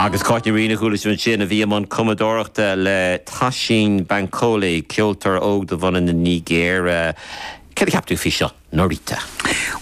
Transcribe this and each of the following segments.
Agus Cáit Ní Riain a chuala sibh ansin, a bhí i mbun cumadóireachta le Toshín Bankole, ceoltóir óg de bhunadh na Nigéire. Céard a cheap tú faoi seo, Norita?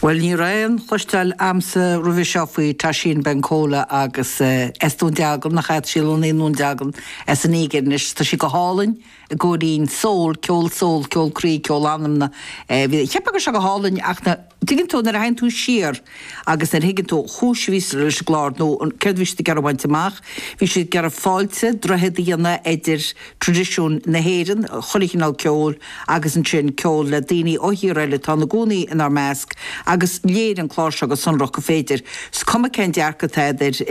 Bhuel, ní raibh aon chloisteáil a'msa roimhe seo faoi Toshín Bankole agus eh, as Dún Dealgan, ach tá sí lonnaithe i nDún Dealgan as an Nígir, anois tá sí go hálainn, an gcomhrian, soul, ceol, soul, ceol croí, ceol anamna, bhí, cheap mé go raibh sé go hálainn ach na, tuigeann tú nuair a théann tú siar agus nuair a thuigeann tú cúis a bhí sa, leis an gclár nó an, céard a bhí siad ag iarraidh a bhaint amach, bhí siad ag iarraidh fáilte, droichead a dhéanamh idir tradisiún na hÉireann, chuile chineál ceoil agus ansin ceol le daoine ó thíortha eile atá ina gcónaí inár measc agus léirigh an clár seo go sonrach gur féidir, is cuma cén dearcadh atá a'd ar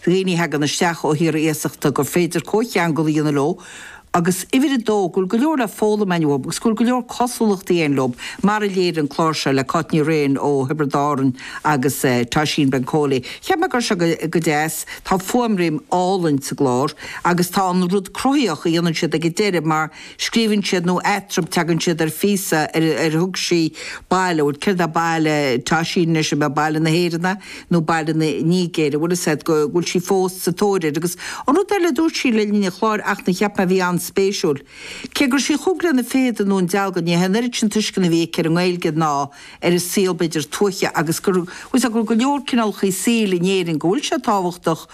dhaoine a theagann isteach ó thíortha iasachta gur féidir comhcheangal a dhéanamh leo, Agus uimhir a dó, go bhfuil go leor le foghlaim a'inn uathu agus go bhfuil go leor cosúlachtaí a'inn leob, mar a léirigh an clár seo le Cáit Ní Riain ó Thiobraid Árann agus Toshín Bankole. Cheap mé go raibh sé go deas. Tá fuaimriain álainn sa gclár agus tá an rud cruthaíoch a dhéanann siad ag an deireadh mar scríobhann siad nó eatarthu teagann siad ar phíosa ar thug sí Baile, céard é baile Toshín anois, an é baile na hÉireann é? nó Baile na Nigéire, bhfuil 'fhios a'd go bhfuil sí fós sa tóir air agus an rud eile a dúirt sí le linn an chláir ach a cheap mé a bhí an-spéisiúil. Cé go raibh sí chomh lonnaithe i nDún Dealgan ní raibh an oiread sin tuisceana a bhí aici ar an nGaeilge ná ar an saol b'fhéidir tuaithe agus bhfuil 'fhios a'd go raibh go leor cineálacha saoil in Éirinn go bhfuil sé tábhachtach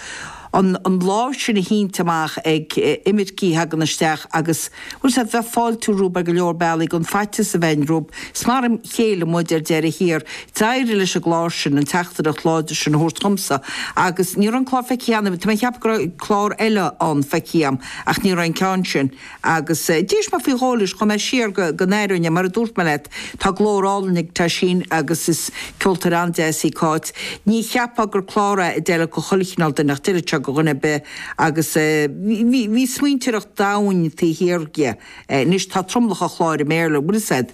an lámh sin a shínt amach ag imircigh a theagann isteach agus bhfuil 'fhios a'd a bheith fáiltiúil rompu ar go leor bealaí gan faitíos a bheith orainn rompu. Is mar a chéile muid ar deireadh thiar. D'éirigh leis an gclár sin, an teachtaireacht láidir sin a thabhairt dhomsa agus ní raibh an clár feicthe a'm cheana, tá mé ag ceapadh go raibh clár eile ann feicthe a'm ach ní raibh an ceann sin. Agus d'éist mé faoi dhó leis, chuaigh mé siar go go n-aireoinn, mar a dúirt mé leat, tá glór álainn ag Toshín agus is ceoltóir an-deas í Cáit. Ní cheapfá gur clár é a d'fheilfeadh do chuile chineál duine ach d'fheilfeadh sé do dhuine ar bith agus bhí bhí smaointeoireacht domhain taobh thiar dhe. Anois tá tromlach an chláir i mBéarla, a bhfuil 'fhios a'd.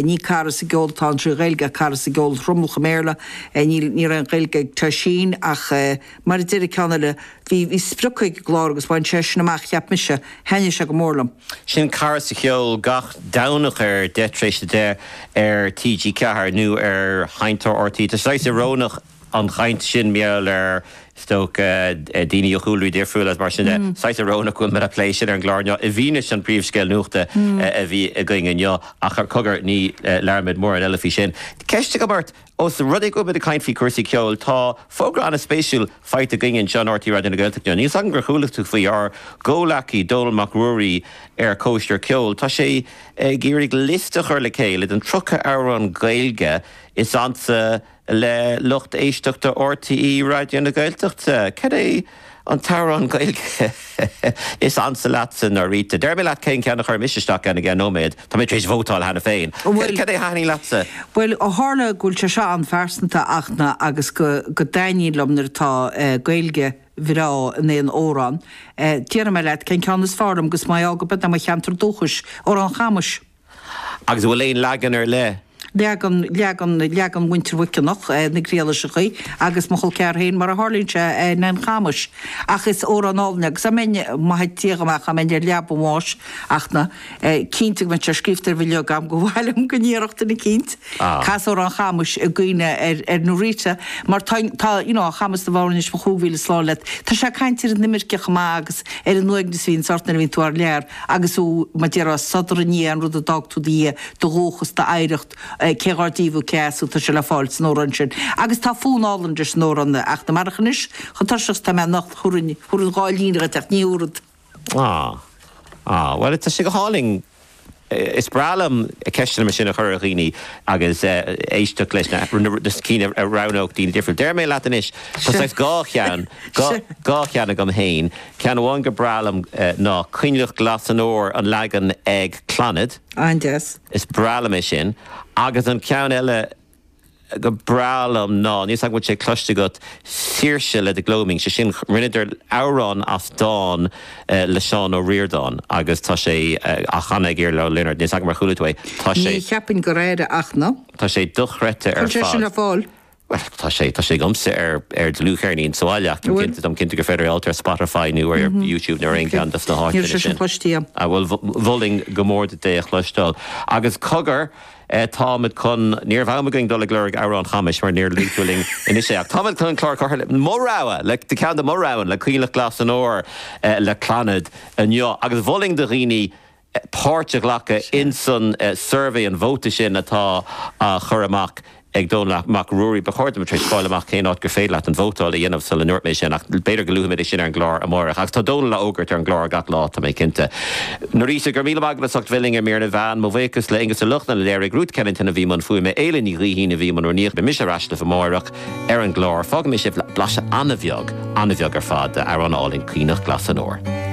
Ní cara sa gceol atá ann trí Ghaeilge ach cara sa gceol, thromlach i mBéarla. Níl níl aon Ghaeilge ag Toshín ach. Mar a déarfadh an ceann eile, Bhí sprioc ag an gclár agus bhain sé sin amach, cheap mise. Thaitnigh sé go mór liom. Sin Cara sa Cheol gach Domhnach ar 10 tar éis a deich ar TG4 nó ar sheinnteoir RTÉ. Tá sé saghas íorónach an chaint sin mar gheall ar is dócha daoine ó chúlraí difriúla agus mar sin de. Saghas íorónach go bhfuilimid ag plé sin ar an gclár inniu i bhfianaise an phríomhscéil nuachta a bhí againn inniu ach ó cogar ní leanfaimid mórán eile faoi sin. Ceist agam ort, Ós rud é go bhfuil muid ag caint faoi cúrsaí ceoil, tá fógra ana spéisiúil faighte againn anseo in RTÉ Raidió na Gaeltachta. Níl 's agam ar chuala tú faoi ár gcomhleacaí Dónall Mac Ruairí ar Chóisir Cheoil. Tá sé ag iarraidh liosta a chur le chéile den 30 amhrán Gaeilge is ansa le lucht éisteachta RTÉ Raidió na Gaeltachta. Cad é. An t-amhrán Gaeilge is ansa leatsa Norita. Déarfaidh mé leat cén ceann a chuir mise isteach ann i gceann nóiméad. Tá mé tar éis vótáil cheana féin. Bhuel. Cad é a thaithnigh leatsa? Bhuel, ó tharla go bhfuil sé seo an-phearsanta ach na agus go go dtaitníonn liom nuair atá Gaeilge bhreá in aon amhrán, déarfaidh mé leat cén ceann is fearr liom agus mar gheall go b'in é mo cheantar dúchais, Amhrán Chamais. Agus an bhfuil aon leagan ar leith? Leagan, leagan, leagan Mhuintir Mhuiceanach, na Griallaiseachaí, agus mo chol ceathar féin mar a tharlaíonn sé, Nan Chamais. Ach is amhrán álainn agus dá mbeinn, maith Dia go mbeadh dá mbeinn ar leaba an bháis ach na, cinnte go mbeadh sé scríofta ar bhileog agam go mhaith liom go ndéarfadh duine eicínt Amhrán Chamais i gcuimhne ar, ar Norita mar tá, tá you know, Chamas na bhFoirnéis mo chúig mhíle slán leat. Tá sé ag caint ar an imirce chomh maith agus ar an uaigneas a bhíonns ort nuair a bhíonn tú thar lear. Agus thú, mar déarfá, sodar i ndiaidh an rud a d'fhág tú do dhiaidh, do dhúchas, d'oidhreacht, cé dhár díobh thú cé as thú, tá sé le fáil san amhrán sin. Agus tá fonn álainn leis an amhrán ach na marach anois, chomh tuirseach is atá mé anocht, thabharfainn, thabharfainn dhá líne dhuit ach ní thabharfad. Ah. Ah. Bhuel, tá sé go hálainn. Is breá liom ceisteanna mar sin a chur ar dhaoine agus éisteacht leis na cinn a roghnódh daoine difriúla. Déarfaidh mé leat anois, tá saghas dhá cheann, dhá cheann agam fhéin. Ceann amháin go breá liom ná Coinleach Glas an Fhómhair, an leagan ag Clannad. An-deas. Is breá liom é sin. Agus an ceann eile go breá liom ná, níl 's agam an bhfuil sé cloiste agat, Saoirse le The Gloaming. Sé sin, rinneadar amhrán as dán le Seán Ó Ríordáin agus tá sé á chanadh ag Iarla Ó Lionaird. Níl 's agam ar chuala tú é. Tá sé. Ní cheapaim gur airigh ach na. Tá sé dochreidte ar fad. Cá bhfuil sé sin ar fáil. Bhuel, tá sé, tá sé agamsa ar, ar dlúthcheirnín sa bhaile ach táim cinnte, táim cinnte gur féidir é a fháil ar Spotify nó ar YouTube nó ar aon cheann dos na háiteanna sin. Níl sé sin cloistí a'm. Ah bhuel, mholfainn go mór duit é a chloisteáil. Agus cogar, eh, táimid chun, ní raibh am againn dul ag lorg amhrán Chamais mar níor luaigh tú linn anois é ach táimid chun an clár curtha le, mo rogha, le, le ceann de mo roghanna, le Coinleach Glas an Fhómhair, eh, le Clannad inniu agus mholfainn do dhaoine, páirt a ghlacadh insan suirbhé, an vóta sin atá á chur amach ag Dónall Mac Ruairí. Ba chóir dom a bheith tar éis fáil amach cén áit gur féidir leat an vótáil a dhéanamh sula ndúirt mé sin ach b'fhéidir go luafaimid é sin ar an gclár amáireach. Agus tá Dónall á fhógairt ar an gclár gach lá, tá mé cinnte. Norita, go raibh míle maith agat as ucht bheith linn ar Mír na Meán. Mo bhuíochas le Aonghus Ó Lochlainn a léirigh, Ruth Kennington a bhí i mbun fuaime, Éile Ní Ghaoithín a bhí i mbun rúnaíochta. Beidh mise ar ais libh amáireach ar an gclár. Fágfaidh mé sibh le blaiseadh an-bheag, an-bheag ar fad, de amhrán álainn, Coinleach Glas an Fhómhair.